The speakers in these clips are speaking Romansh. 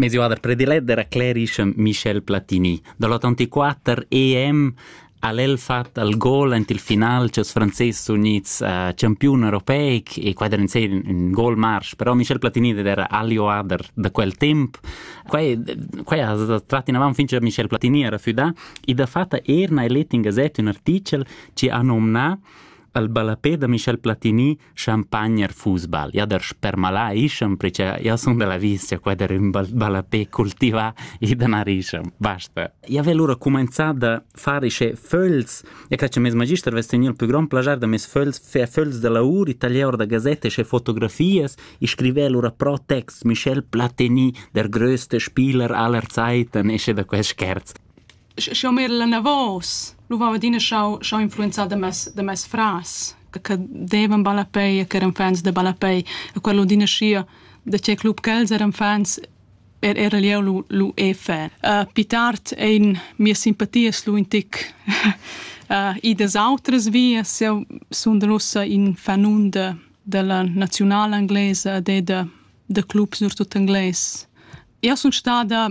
Mes oader prediletter ha clerisch Michel Platini. Da l'84 EM ha el fatg al gol ent il final che els franzés unids uh, campiun europeic e quai era in, un gol marsch. Però Michel Platini era agli oader da quel temp. Quai, quai ha tratto in avanti fin che Michel Platini era fuda e da fatta erna el in gazette un articel ci ha nomna al ballapé da Michel Platini champagner er football ja der spermalà ischem perché ja sun da la vista qua der ün ballapé cultivà e da narischem basta ja vel lura cumanzà da far ische föls ja cre che mes magister vess teni il più grand plagiar da mes föls fer föls da laur e taglier da gazette ische fotografias e scriver lura pro text Michel Platini der größte Spieler aller Zeiten ische da quel scherz Sch'jeu m'era anavos, lu veva adina schau schau influenzar da mes da mes frars che che devan ballapei e ch'eran fans da ballapei e quel adina schia da tgei club ch'els eran fans er era jeu lu lu e fan. Pli tard ein mias simpatias lu in tic idas autras vias. Jeu sundel ussa in fanun da dalla naziunala englesa ed er da da clubs surtut engles. Jeu sun stada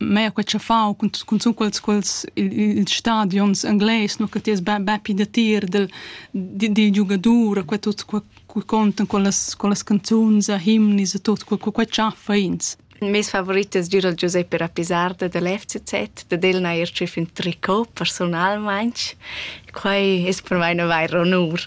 mea quei che fa cun cun quels quels ils stadions engles no che ti es be be pi da tir del di di giugadur quei tut quei contan quellas quellas canzuns a himnis a tut quei quei chaffa ins Il mes favorit es giu dal Giuseppe Rapisarda dal FCZ, dad el n'ha eir tschüf ün tricot personalmaing. Quai es per mai na vair onur.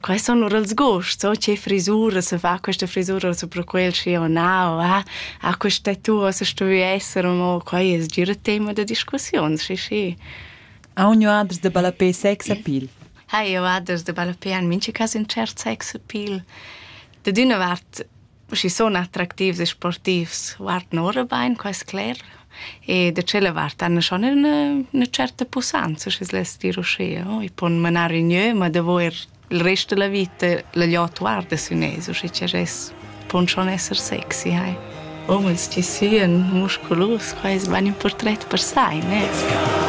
Quai sun lur els gusts, o che frisura se fa questa frisura supra quel schi o nao, ah, ah questa tua se stui esser, mo quai es gira tema da discussiun, sì, sì. Ha un adres de balapé sex appeal? Ha io adres de balapé an mince cas in cert sex appeal. Da d'üna vart schi sun attractivs e sportivs guardan ora bain, qua es cler. E da tschella vart han schon üna, üna certa pussanza, schi's less dir uschea. I pon manar in gnö, ma davo er il rest da la vita la gliot guarda sün eis, uschi cha gess pon schon esser sexy, hai. Omens chi sian musculus, qua es bain ün purtret per sai, ne?